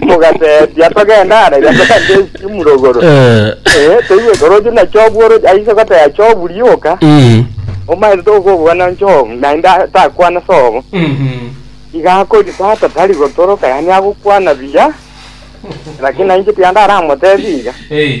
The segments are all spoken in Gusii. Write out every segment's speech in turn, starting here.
mogateebia togende are iga togende ase emurogoro Eh, Eh, toigwe koroche na Jobu oroche aise goteba Jobu rioka mm, omaete tokobwana Jobu naende takwana sobo mhm. iga akori tata tari gotoroka yaani agokwana buya lakini nainche tiga ndaramotebi iga Eh,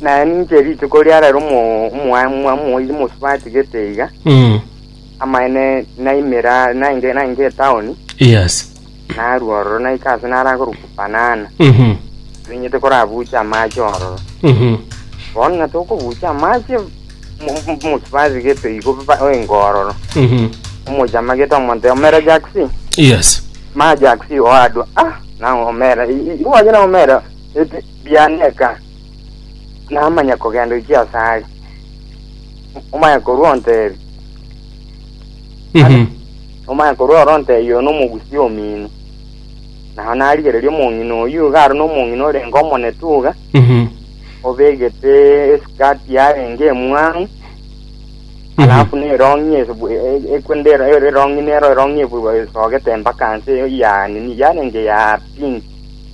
Naye ninche rituko riarera omo- omoa- omoa- omoibi mosubati gete iga, Mm. amaene naimera nainge nainge etaoni, Yes. narua ororo naika ase narakorokwa Banana, Mhm. ninyete korabucha amache ororo. Mhm. Bono ng'a tokobucha amache mo- mo- mosubati gete igo ba- oenga ororo. Mhm. Omochama gete omonto omera Jackson, Yes. ma Jackson oadwa, ah, na omera, i- i- iwache na omera, ete, Bianeka, namanya kogenda oiche asare, omanye korwa ontebie, Mhm. omanye korwa ore ontebie oyo nomogusi omino. Nao narigereria omong'ina oyio iga aro nomong'ina orenge omonetuga, Mhm. obegete esikati yarenge emwang'u, alafu nerongi esu- e- e- ekwe ndero ero erongi nero erongi ebu- esogete mpaka nse ya nini yarenge ya pinki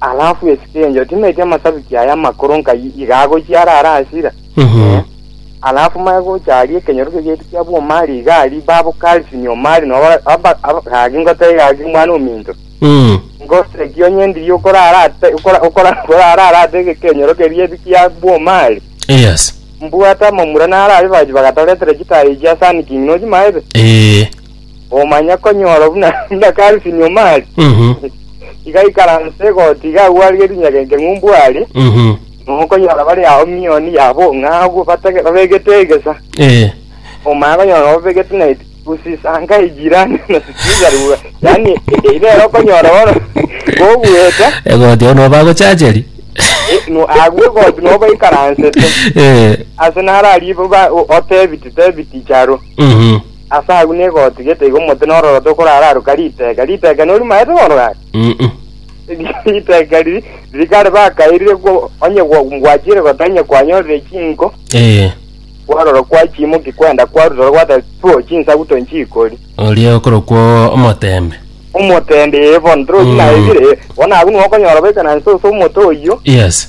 Alafu esike enche otimetie amasabiki aya amakoro nkai iga agochia ara ara asira. Mhm. Alafu maya gocha aria ekenyorokia gietu kia bwomari iga ari babo Calvin omari no aba- aba- aba- gaki ngotebe gaki mwana ominto. Mm. Ngoseki onye ndiri okora ara ate- okora- okora- okora ara ara ate ekenyorokia gietu kia bwomari. Yes. Mbwate amamura naro aria bachi bagatoretera chitayi chia Sun King nochimaete. Eh. omanya konyora buna buna Kalsi Nyomari Mhm. igaikaransa egoti igagwaria rinyagenke ng'umbu aria Mhm. nokonyora bari ao mioni yabo ng'a agwo batege babegete egesa Eh. omanya konyora obegete na usisanga ejirani na sikizarua yani e- ere ero konyora bono gogweta Egoti ono bagochacheri. e- no- agwo egoti nobaikaransete Eh. ase nararibo ba o- otebiti tebiti charo Mhm. Ase agwo negoti gete iga omote nororoto okorararuka riteka. Riteka norimaete bono gaki? Mm-mm. riteka riri riri kare bakairire gwo- onye gwa- gwachire gota onye kwanyorire chinko Eh, kwarora kwachimoki kwenda kwarutora gwata tuo chinsagu tonchikori oria okorokwa omotembe. omotende bono torochi Mm. naebire bono agwo nigo okonyora boikana nse ase omote oyio Yes.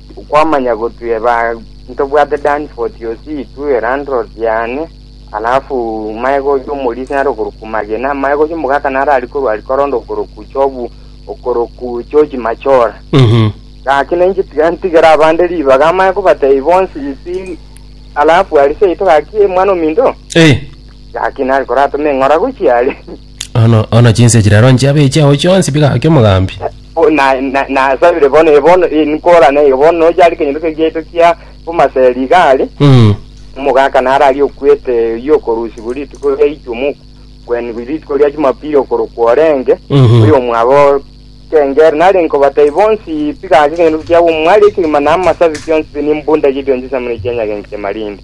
Okwamanya gotue ba ntobwate Danforth osi tu elandlord yane alafu maye gocha omorisi nare okoroku magena maye gocha omogaka nare ari korwa ari koronda okoroku chobu okoroku chochi machora Mhm. gaki nainche tiga ntigera abande ribaga amaye kobatei bonsi isi alafu ari seito gaki mwana ominto Eh. gaki nari koratome ng'ora gochia ari Ono ono chinse chirero nchiabe chiao chionsi bigake omogambi. Bo- na- na- nasabire bono eh, bono eh, nkorane eh, bono noche are kenyoreso giaito kia omaseri iga are Mm. omogaka naro aria okwete oyio okorusigwa rituko ria ichumu kwenigwa rituko ria chumapiri okorokwa orenge Mhm. oyo omwabo kengere nari nkobatai bonsi piga ake kenyoreso kiabo omwari ekegima na amasabi kionsi nimbunda gidio nchisamire chianyagenki chiamarindi